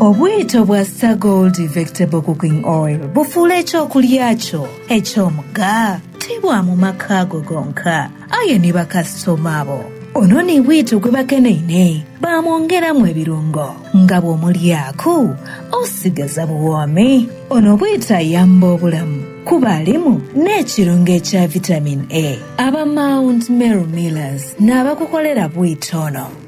Obwito bwa Sir Gold Vegetable Cooking Oil bufuula eky'okulya kyo eky'omugha ti bwa mu maka go gonka, aye ni bakasitoma bo. Ono ni bwito gwe bakeneine baamwongeramu ebirungo nga bw'omulyaku osigaza buwoomi. Ono bwito ayamba obulamu kuba alimu n'ekirungo ekya Vitamin A. Aba Mount Meru Millers n'abakukolera bwito ono.